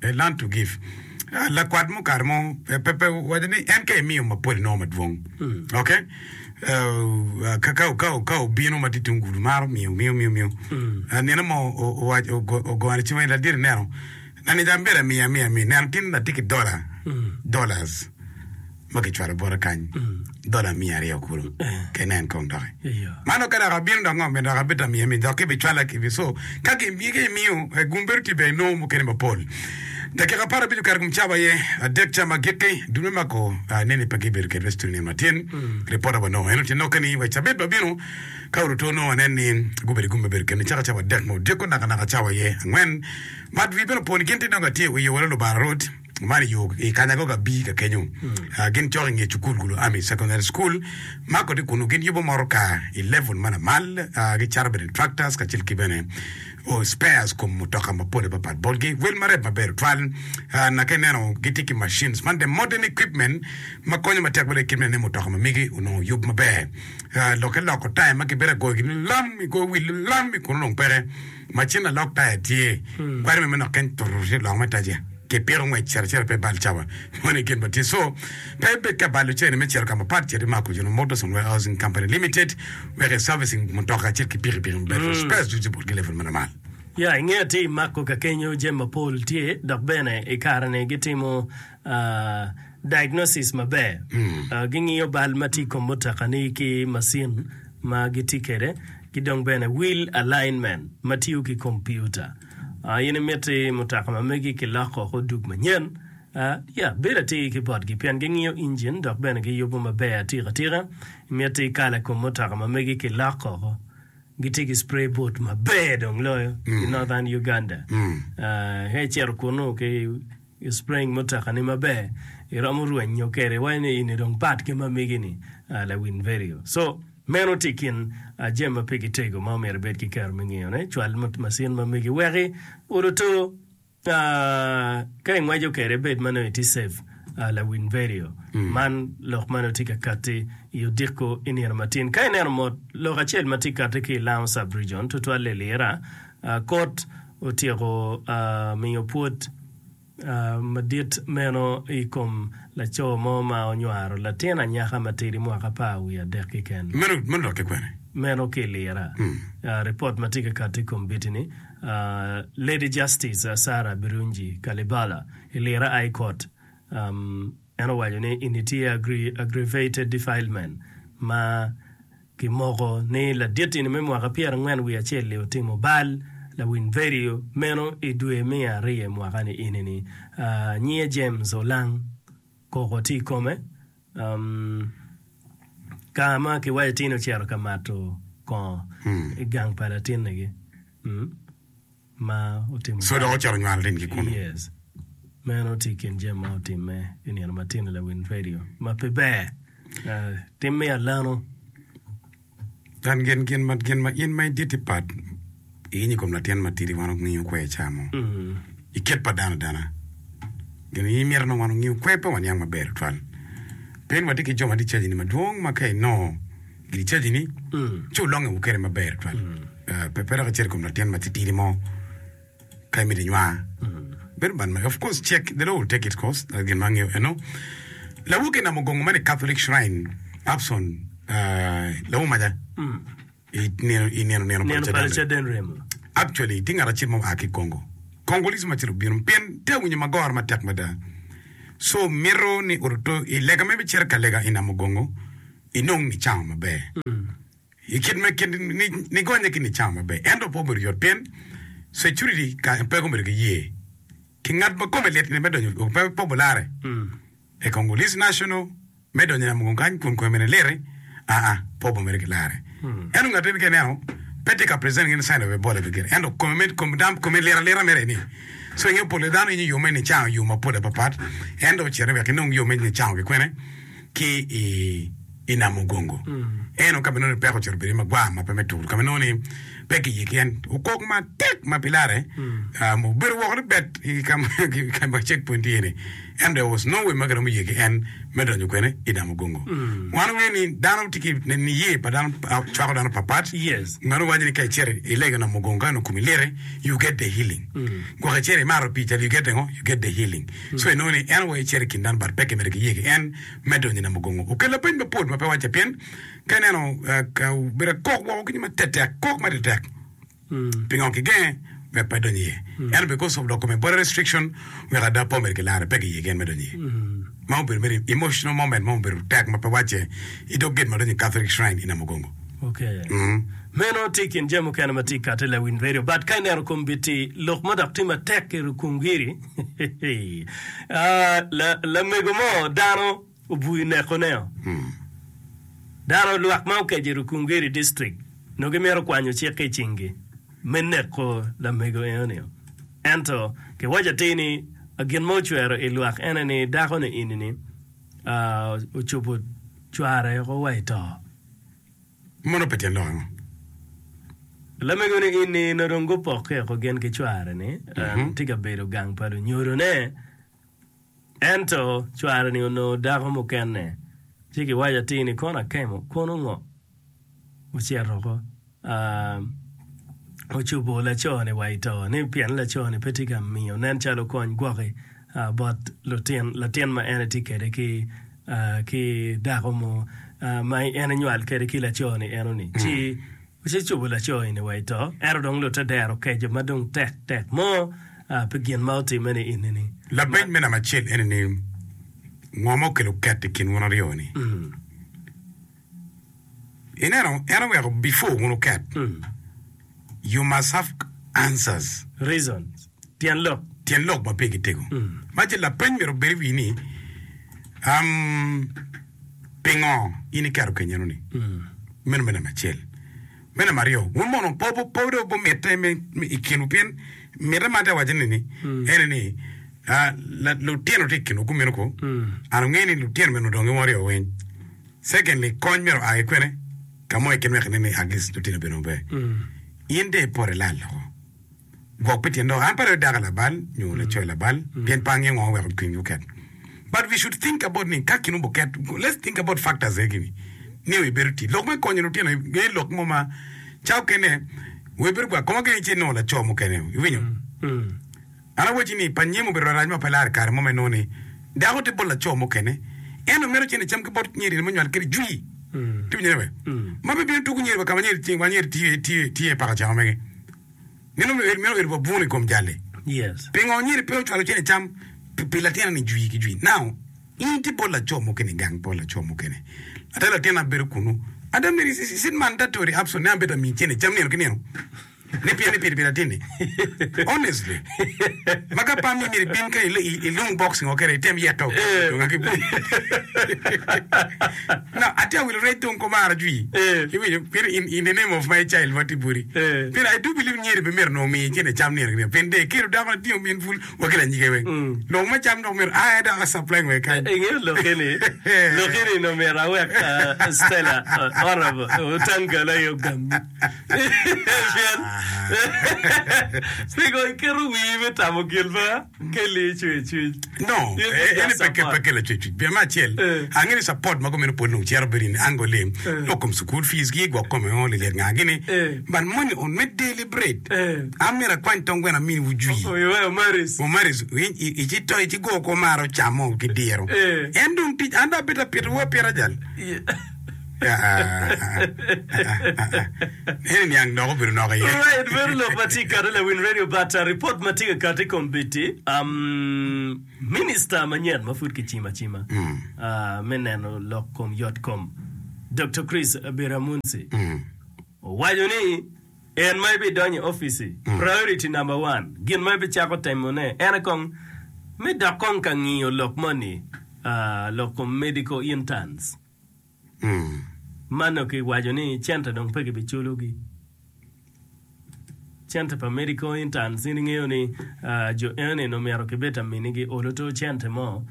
They learn to give. Lakwat mo kare mo pe owaco ni en ka imiyo mapol inongo madwong. Ok? Ka obino ma tye tung gudu maro miyo miyo miyo miyo. Nino mo owaco ogone cim ni ladit ineno. Nani ca myero amiye amiya amiya. Neno gin atye ki dola dollars. ma kicwalo bote kany dola miya aryo kulu kene en kong doki ma dok ka dok abino dok ngo me dok abita miya mi dok kibi cwala kibi so ka ki miyo gum bedo tye ber nongo mukene mapol dakika apar abic okato gum cawa aye adek ca ma gikki dul me mako nene pe gibedo kede me cituni nino ma tyen ripota wa nongo eno tye noke ni wa cabit ma bino ka oruto nongo wanen ni gubedo gum me bedo kene caka cawa adek ma odyeko naka naka cawa aye angwen ma dwi bene oponi gin tye dong atye i wi yowere lubara rwot Man i yo i kanya go gabbi ka kenyo gin cok i nge cukul gulo Army Secondary School ma kodi kunnu gin yubo motorka i level ma lamal, gicato bene tractors kacel ki bene spares kom mutoka mapol apapat botgi. Wel ma rep maber tutwal na ka ineno gitye ki machines man the modern equipment ma konyo matek bene kit me ne mutoka ma migi onongo oyub maber. Lokke loko taya ma gibedo ka goyogi ni lam, igoyo wil ni lam kunnu dong peke. ma cen alok taya tye kwari me manok keny tutu tye lok me taja ki piko ngwec cito acita pe bal cawa moni gin ma tye so pe ibed ka balo cene me cito ka mapat cit i mako jona motors and warehousing company limited wek i servicing mutoka acel ki piki piki maber for spares ducu ki bot ki level ma lamal. Ya i nge atir i mako ka kenyo jami mapol tye dok bene i kare ni gitimo aa. Diagnosis maber, Gingiyo bal ma tye i kom mutokani ki macin ma gitye kwede ki dong bene wheel alignment ma tiyo ki kompiuta. In imiti mutoka ma megi kiloko woko odug manyen? Ya, bed atir ki botgi pien gingiyo injin dok bene giyubo maber atikatika. Imiti kala kom mutoka ma megi kiloko woko? Gitye ki spray boot maber dong loyo i Northern Uganda. Ka icito kunu ki I spring mutekani maber iromo rwenyo kede iwaco ni ini dong pat ki ma migi ni lawin vedio so meno ti kin jami ma pigi tego ma omyero ibed ki kero me ngeyo ne cwal masin ma migi weki oluto ka ingweco kede ibed manongo iti save lawin vedio man lok mane oti ka kati i odiko inino matin ka ineno mot lok acel ma ti kati ki ilango sub region tutwal ilira kot otyeko miyo pwod madit meno i kom laco mo ma onywaro latin anyaka matidi mwaka apar wiye adek ki keken. Meno lokke kwene? Meno ki i lira. Ripot ma tye ka kati i kombitini, Lady Justice Sarah Birungi Kalibala i lira High Court, en owaco ni eni tye aggravated defilement ma Kimoko ni laditini me mwaka pyerangwen wiye acel-li otimo bal lawiny vedio meno i dwe me ariyo i mwaka-ni enini. Nyiye James Olang koko tye i kome ka ma kiwaco tini ocito ka mato kongo i gang pa latinnigi. Co dok ocito nywal lim ki kunu. Kan gin gin ma gin ma in ma in dit-ti pat iyenyo i kom latin matidi wan ongiyo kwe ica mo i kit pa dano adana. Gin in imito nongo wan ongiyo kwe pe waniang maber tutwal. Pien watye ki jo ma tye caji-ni madwong ma ka inongo I cajini, ci wulonge wukele maber tutwal, pe pe dok icit i kom latin matitidi mo ka imito inywa. Bedo man mege, of course, check, they will take it, cos that's gin ma angeyo eno. Lawu ki namo gongo man i Catholic Shrine, Upson, ah, lawu maja, i nino, i nino, nino Neno pale caden remo. Actually, tye ngat acel ma oa ki Congo. Congolese ma acel obino pien tye awinyo magora matek mada. So mito ni oruto i lega ma ibicito ka lega i Namugongo, inong nicamo maber i kit me kit nigonye ki nicamo maber ento pe obedo yot pien security kany pe gubedo ki ye ki ngat ma kome lit ni me donyo dong pe popularre e Congolese national me donyo yamo kong kany kun kome ni liti aa pe obomere ki lare ento ngat eni ka ineno pe tye ka present any sign of Ebola gire ento kome me kome dam kome lit alita mere ni so inge pole dano yenyo yo me nicamo yo mapol apapat ento ocito wek inong yo me nicamo kikwene ki i Nam Mugongo. Eno, ka ma nongo ni peko ocito bedo magwar ma pe me tur, ka ma nongo ni pe kiye ki en, okok matek ma pi larre obedo woko ni bet i ka ma cekpwony tye ni. Ento there was no way ma kiromo ye ki en me donyo kwene i Nam Mugongo. Wan wangeyo ni dano tye ki niye pa dano cwako dano papat. Meno giwaco ni ka icito ilego Nam Mugongo ka nongo komi liti, you get the healing. Gwok icito imaro pii cal, you get the ngo? You get the healing. Co inongo ni en aye cito i kin dano but pe kimedo ki ye ki en me donyo i namugongo. Okel lapeny mapol ma pe wacce pien ka ineno obedo akok woko ki nyo ma tetek kok ma tetek pingo kigenge wek pe donyo iye ento because of dok kome body restriction wek ada po medo kilaro pe ki ye ki en me donyo iye ma obedo mere emotional moment mo obedo tek ma pe wacce i dog gate ma donyo i Catholic shrine i Namugongo. Meno tye i kin jami mukene ma tye kati i Lewin Radio but ka ineno kom biti lok ma dok tye matek ki rukungiri. Lamego mo dano obwui neko ne o. Dano lwak ma okeco i Rukungiri district nongo gimito kwanyo cik ki i cingi me neko lamego eno ni o. Ento kiwaco atir ni gin ma ocwero i lwak ene ni dako ni eni ni ocubo cware oko wa i to. Mono pe tyen lok ango? Lamego ni in ni nongo dong gupokke oko gin ki cware ni en tye ka bedo gang pa lunyodo ne ento cware ni onongo dako mukene ci ki waco atir ni kono akemo kono ngo ocito oko ocubo laco ni wa ito ni pien laco ni pe tye ka miyo nen calo kony gwok ki. bot latin ma en etye kede ki ki dako mo ma en enywal kede ki laco ni eno ni ci ci cubo laco eni wa ito ento dong lute dero keco ma dong tek tek mo pi gin ma otime ni eni ni. Labenc me namba acel eni ni ngo ma okelo ket ikin wun aryo ni? Ineno en oweko before wun wuket you must have answers, Reasons, tyen lok. tyen lok ma pigi tego. Ma ce lapeny myero obed i wi ni um, pingo in iketo kenyeno ni? Meno me namba acel. Me namba aryo, wun mono pe wu- pe dong wumitte me me i kinwu pien mitte ma atye ka waco ni ni ene ni ah, la- lutino tye i kinwu gumino ko an ongeyo ni lutino meno dong giwongo ryo weng. Secondly, kony myero oa ki kwene? Ka mo i kin wek inen ni at least lutino bene obe. In de ipoto ilal loko. Gwok pi tyen dong an pe adok dako labal nyo laco labal pien pe angeyo ngo ma weko cwinygi oket. But we should think about ni ka kinu buket, let's think about factors egi ni, niyo ibedo tii, lok me konyo lutino iye lok mo ma ca okene wer ibedo gwa koma gene ci inongo laco mukene. Iwinyo? An awacci ni, pa nyim obedo larac ma pe laro i kare mo ma inongo ni dako tye bot laco mukene, ento meno cen icam ki bot nyerine ma onywal kede jwi. Tiwinyo ne bene? Ma pe bino tuku nyeri wa ka ma nyeri tye, wa nyeri tye, tye, tye i paka cawa mege. Meno obedo, meno obedo wa buno i kom jal-li. Yes. Pingo nyeri pe ocwalo cen icam pi, pi latinani jwi ki jwi? Now, in itye bot laco mukene, igang bot laco mukene. Ada latinna bedo kunu. Ada myero i, i cit man, Daktari Upson, ni an bed amiyi cen icam nino ki nino. ni pien ni piri piri atini honestly ma ka pam ni myero ibin ka ilung box ngo kere item yeto dong aki no ati awilo rec dong kumara jwi iwinyo pien in the name of my child ma ti buri pien I do believe nyeri pe myero nongo miyi kine cam nino nino pien de kelo dako latingo min pul wa ki lanyige weng nongo ma cam dok myero aa dok a supply ngo kany ingeyo loki ni loki ni nongo myero awek Stella honorable otangal aye ogam Pien pingo iketo wii me tamo gin ma Kelly ecweyo i cwiny? No, In eh, eni just pe ke- support. pe kela cwecwic. Pien me acel, Eh. ange ni support ma gumeno pwod nongo cito bedo in ango lim, Eh. lok kom school fees gi, gwok kome ongo lilyet nga gini. Eh. But money on me daily bread. Eh. An myero akwany tong gweno amini wu jwi. Oh, iweyo Maris. Mumaris, i- i- ici to ici go ko maro camo ki diro. Eh. En dong tic, an dong apito apito wa pira jal. Yeah. Alright bedo lok ma tye kati lawil radio but report ma tye ka kati kombeddi um, minister manyen ma pud kicimo acima ah, me neno lok kom yot kom Doktor Chris Biramunzi owaco ni en ma ibidonyo i office priority number one gin ma ibicako temo ne en aye kong me dok kong ka ngiyo lok moni ah, lok kom medical interns Man dong ki waco ni cente dong pe ki bi culo gi. Cente pa medical interns in ingeyo ni jo eni dong myero ki bed ta mini gi olo two cente mo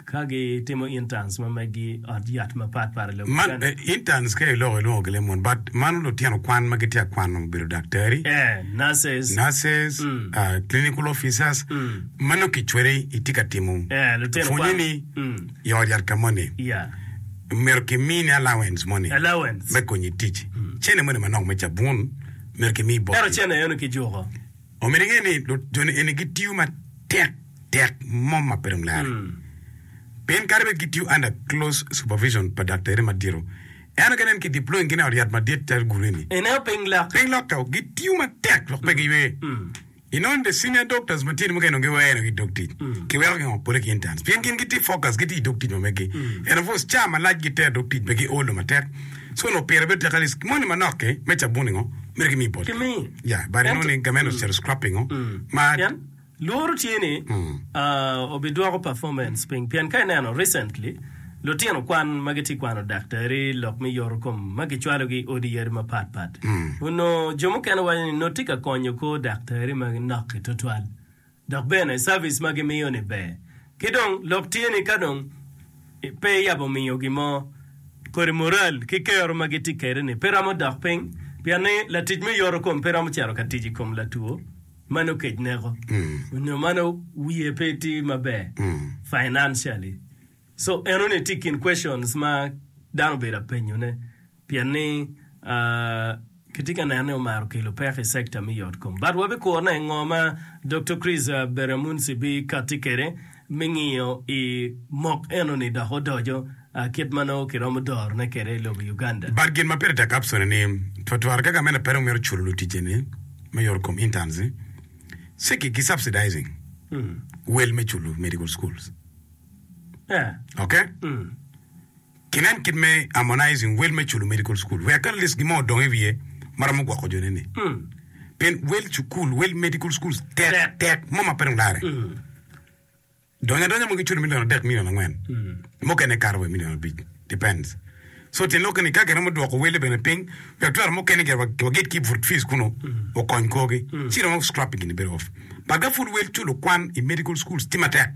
ka gi timo interns ma megi ot yat ma pat pat i lobo Man kene. eh, interns ka i lok ilwongo gi lemon but mano lutino kwan ma gitye ka kwano bedo daktari, Eh, nurses. nurses, Mm. ah, clinical officers Mm. ma nongo kicwere itye ka timo Eh, lutino pwonye kwan. ni Mm. i ot yat ka moni, myero kimini allowance moni me konyo i tic. Cene moni manok me cabun myero kimi botgi. Omyero inge ni joni eni gitiyo matek tek mo ma pe dong lare. Pien kadi bed gitiyo under close supervision pa daktari madito, ento ka nen ki deploy gin i ot yat madit calo gulu eni, piny lok to gitiyo matek lok pe giywe. I nongo the senior doctors matino mukene onongo giweno ki dog tic, kiweko gi ngo? Pole ki interns pien gin gitye focus gitye idog tic ma megi and of course ca malac giter dog tic megi olo matek so onongo pire bedo tek at least moni manok ki me cabun i ngo mere gimiyi bot Kimi. yeah but i know ni gamente ocito scrapping ngo ma Pien lworo tye ni ah, obidwoko performance piny pien ka ineno recently Lutino kwan ma gitye kwano daktari lok me yoto kom ma kicwalogi i odi yadi mapat pat onongo jo mukene waco ni nongo tye ka konyo kor daktari ma ginok-ki tutwal dok bene cavic ma gimiyo-ni ber. Ki dong lok tye ni ka dong pe iyabo miyo gin mo, kodi mural ki kero ma gitye kwede-ni pe romo dok piny pien ni latic me yoto kom pe romo cito ka tic i kom latwo ma nongo kec neko nyo ma nongo wiye pe tye maber financially. So eno ni tye i kin questions ma dano obedo ka penyo ne pien ni ki tye ka neno ni omaro kelo peko i sector me yot kom. But wa bi kuro ne ngo ma Doktor Chris Beryamunsi bi kati kede me ngiyo i mok eno ni dok odojo kit ma nongo ki romo doro ne kede i lobo Uganda. But gin ma pire tek apsone ni twa twar ka gamente pe dong mito culo lutije ne me yot kom, interns, ni ci ki subsidizing wel me culo medical schools. Ok? Kinen kit me harmonizing wel me culo medical school. Wek at least gin mo odong i wiye ma romo gwoko jone ni. Pien wel cukul, wel medical schools tek, tek, mo ma pe dong larre. Donyo adonya mo giculo milion adek, milion angwen. Mukene kato wa i milion abic. Depends. So tyen lok ni ka giromo dwoko wele bene piny, wek twero mukene gire wa- waget ki vut fees kunu, okony korgi, ci romo scrap gin ni bedo off. But ka pud wel culo kwan i medical schools tye matek,